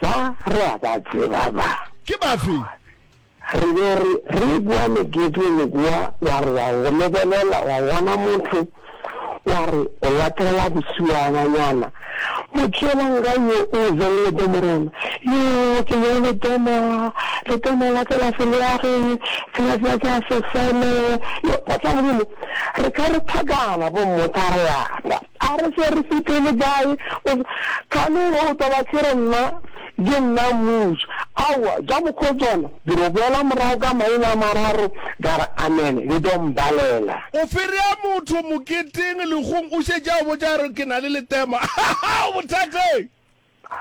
Ba re a ba tseba ba. Ke bafe? Re be re, re boa meketeng kua, wa re wa go lebelela, wa bona motho, wa re o latela bosiwananyana, motšeelang ga yo o beng le temo rena, yoo, ke beng le temo, le temo la ka la seleage, sela sela ke a sefele, yo, Tatla Modimo, re ka re phakana, bo mmotsa re lapa. A re se re sepele kae o se kgale o tlo ba se re nna ke nna mmušo. Aowa, ja mokgotswana, ke no boela morago ka maina a mararo ka re amen, le tlo mbalela. O ferea motho moketeng legong o šetše a botša a re ke na le letema. Hahaha! O bothateng?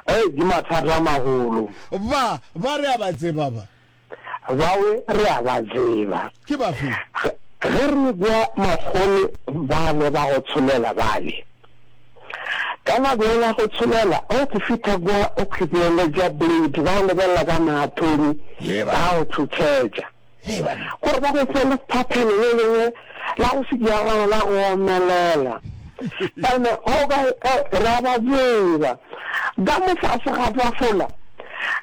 Hei, di mathata a magolo. Ba, ba re a ba tseba ba. Bawe re a ba tseba. Ke bafe? Ge, ge re ekwa makgolo bale ba go tsholela bale, ka nako yela ya go tsholela, o ke fitha kwa, o khwipeletša plate, ba go lebelela ka maatoni, ba go thuthetša. gore ba go fe lephaphelo le lengwe la go se diagana la go omelela. Ene o ka ra ba tseba ka mofase ga tafola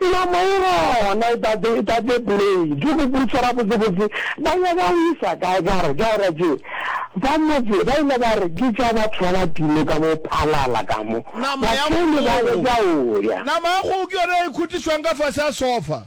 nama e gona e tate e tate plate go botsa ra botse botse ba ya ba o isa kae ka re ka ra tse ba motse ba ile ba re ke tša batho ba ba timo ka mo phalala ka mo ba tšhele ba le ka o ya nama ya go ke yona e khutišwang ka fase ya sofa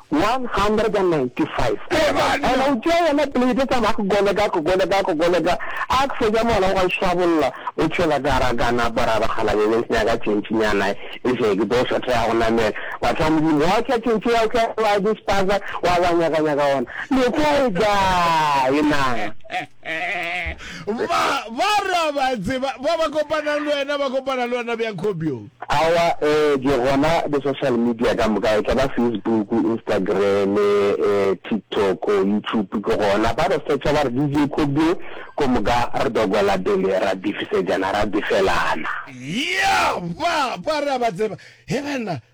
195 and o tšea yona plate tsa ba koleka koleka koleka a fetša mola o ga swabolola o tšhela ka ra ka napa ra ba kgala bebe senya ka tšentši nyana e se ke tlo sa tla go namela wa tla modimo wa tla tšentši ya tla wa di spaza wa ba nyaka nyaka ona le go ga e na Ba, ba re a ba tseba. Ba ba kopanang le wena ba kopana le wena bjang Kgobjong? Aowa, eh, di gona di-social media ka moka, e tla ba Facebook, Instagram, eh, TikTok, YouTube, ke gona. Ba re search-a ba re DJ Kgobjong, ko moka re dokwela pele ra bifisejana, ra bifelana. Yah! Ba, ba re a ba tseba. He banna!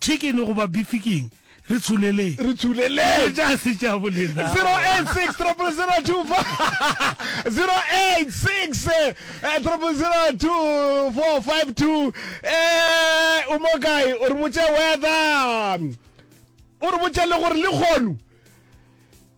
Chicken goba beef king? Re tsholeleng. Re tsholeleng. Dilo tša se tša bolena. 086 30025 086 3002452 Eh o mo kae o re botše weather o re botše le gore le kgono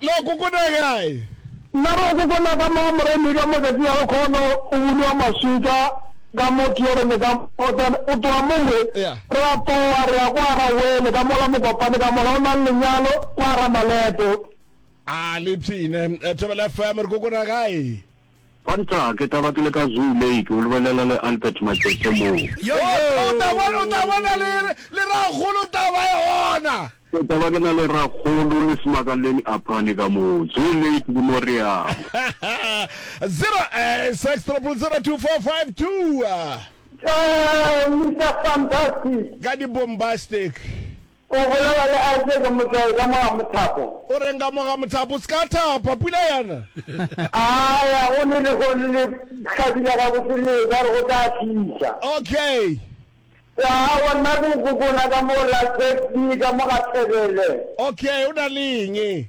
La kokona gae. Na go kokona ka mo moremi ka matšatši a go kgono o bulwa maswika ka mo tierene ka mo then o tloga mo we re a tloga re ya kwa ga wele ka mola mokopane ka mola o nang lenyalo kwa ga maleto. A le psine Thobela FM re kokona gae. Kwantaa, ke taba ke le ka Zoo Lake, o lebelela le Albert Matsetse moo. Yoyo! O tla bona le Rakgolo Taba e gona. Ke taba ke na le Rakgolo le Smakaleni Aphane ka moo. Zoo Lake ke mo re yang. Zero, six, triple zero, two, four, five, two. Mister Fantastic. Ka di-bombastic. O bolela le Isaac ka motswai ka mo ga mothapo. O reng ka mo ga mothapo? O se ka thapa, pula ya na. A ya go le lehono le hlabile gabotse le ekwa re go tla fihla. Okay. Wa wa nna ke go kukuna ka mo la Tsepfi ka mo ga Thebele. Okay, o na le eng?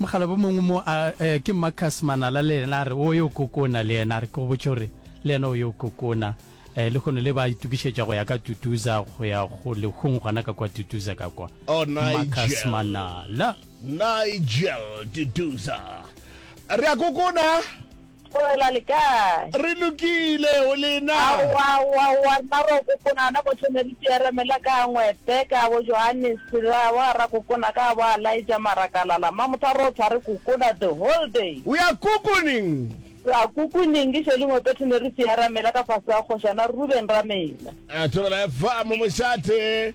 Mokgalabje mongwe mo a, eh, ke Marcus Manala le yena a re o yo kokona le yena. A re ke go botše gore le yena o yo kokona. Eh, lehono le ba itokišetša go ya ka Tutuza go ya go lehung gona ka kwa Tutuza ka kwa. Oh, Marcus Nigel. Manala. Nigel Tutuza. Re a kokona. Tlogela le kae? Re lokile, o le na? Aowa, aowa, aowa, rena bokokona ana bohle ne re tšeeremela ka Anngwete, ka bo Johannes, ra boa ra kokona ka bo Alaija, marakalala, mma motho a re o tshware kokona the whole day. We are kukuning! Re a kukuning, ke šele Ngwepethe ne re tšeeramela ka fase ga Kgošana Reuben Ramela. Tlogela efa mo mošate.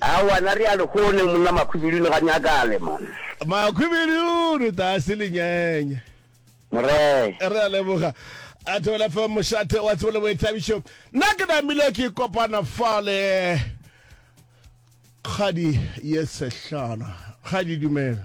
Aowa na re a le kgone monna Makhwibidu le ga nyakale man. Makhwibidu re ta se le nyenye. Moree. Re a leboga. A thobela fa mošate wa tsebo le boithabišo. Nna ke namile ke kopana fa le kgadi ye sehlana. Kgadi dumela.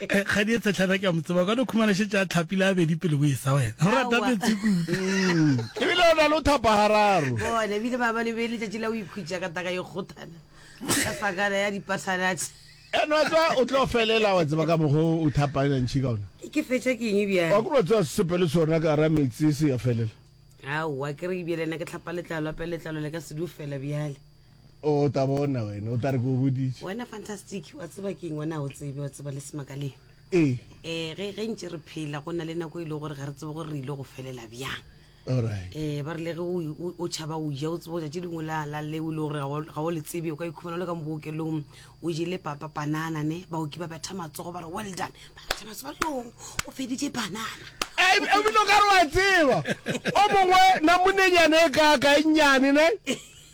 Kgadi e tshetlhana ke a mo tseba ka no khumana shetse a tlhapile a bedi pele bo e sa wena. O rata metsi kudu. E bile o na le o thapa hararo. Bona bile ba ba le be le tšatši la o ikhutša ka taka e kgothana. Ka sakana ya dipasanatsi. E no tswa o tlo felela wa tseba ka mogo o thapa ena ntši ka ona. Ke fetša ke eng bjang. Wa ku no tswa sepe le sona ka ra metsi se ya felela. Aowa ke re bjele na ke tlhapa letlalo ape letlalo le ka se du fela bjale. O ta bona wena, o tla re ke o boditše. Wena Fantastic, wa tseba keng wena o tsebe, wa tseba le Semakaleng. Ee. Eh, ge, ge ntše re phela, go na le nako e le gore ga re tsebe gore re ile go felela bjang. Alright. Eh, ba rile ge o, o, o tšhaba o ja, o tsebe go tšatši dingwe la, la leo e le gore ga o- ga o le tsebe, o ka ikhumana o le ka mo bookelong, o jele papa panana ne, baoki ba betha matsogo ba re well done, ba betha matsogo ba re "Yoo, o feditše panana. E- ebile o ka re wa tseba o mongwe namonenyana e kaaka e nnyane ne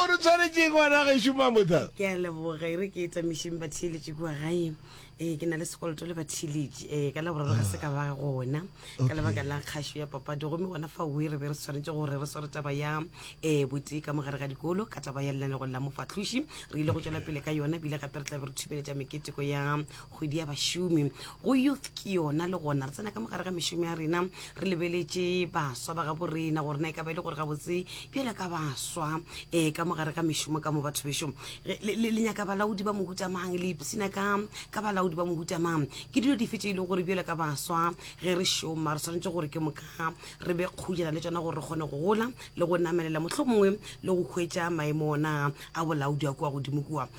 O re tshwaretšeng ngwana gešo Mamotha. Ke a leboga e re ke etamišeng batheeletši kua gae ee ke na le sekoloto le batheeletši ee ka laboraro ga se ka ba gona ka lebaka la kgašo ya papadi gomme gona fa oe re be re tshwanetse gore re sware taba ya um botee ka mogare ga dikolo ka taba ya lenanegong la mofahloši re ile go tšwela pele ka yona ebile gape re tla be re thubeletša meketeko ya kgwedi ya bašomi go youth ke yona le gona re tsena ka mogare ga mešomi ya rena re lebeletše baswa ba gabo rena gore na e ka ba e le gore gabotse bjale ka baswa um eh, ka mogare ga mešomo ka mo batho bešo le nyaka balaodi ba mohutamang le ipsina ka ka balaodi ba mohutamang ke dilo dife tše e leng gore bjale ka baswa ge re šoma re tshwanetse gore ke moka re be kgojela le tsona gore re kgone go gola le go namelela mohlho mongwe le go hwetša maemo ona a bolaodi a kua godimo kua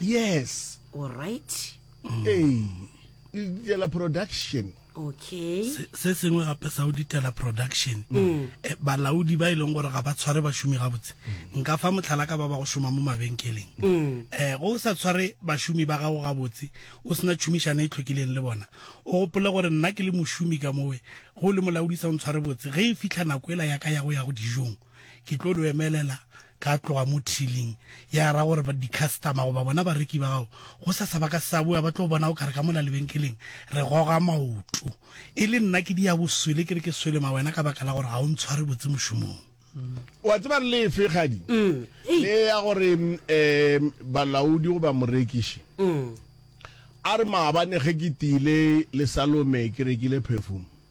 yes all right ee le ditela production okay Se- se sengwe gape sa o ditela production Eh, balaodi ba e leng gore ga ba tshware bašomi gabotse nka fa motlhala ka ba ba go šoma mo mabenkeleng um go o sa tshware bašomi ba gago gabotse o sena tšhomišano e tlhokileng le bona o gopole gore nna ke le mošomi ka mowe go le molaodi sa o ntshware botse ge e fitlha nako ela yaka ya go ya go dijong ke tlo lo emelela ka tloga mo thiling ya ra gore di-customer goba bona bareki ba gago go sa sa ba ka sa boa ba tlo bona o kare ka mola lebenkeleng re goga maoto e le nna ke dia boswele ke re ke swele ma wena ka baka la gore ga o ntshware botse mošomong wa tseba re lefe kgadi mm. le ya gore um balaodi goba morekiši mm. a re maabane ge ke tile le salome ke rekile perfume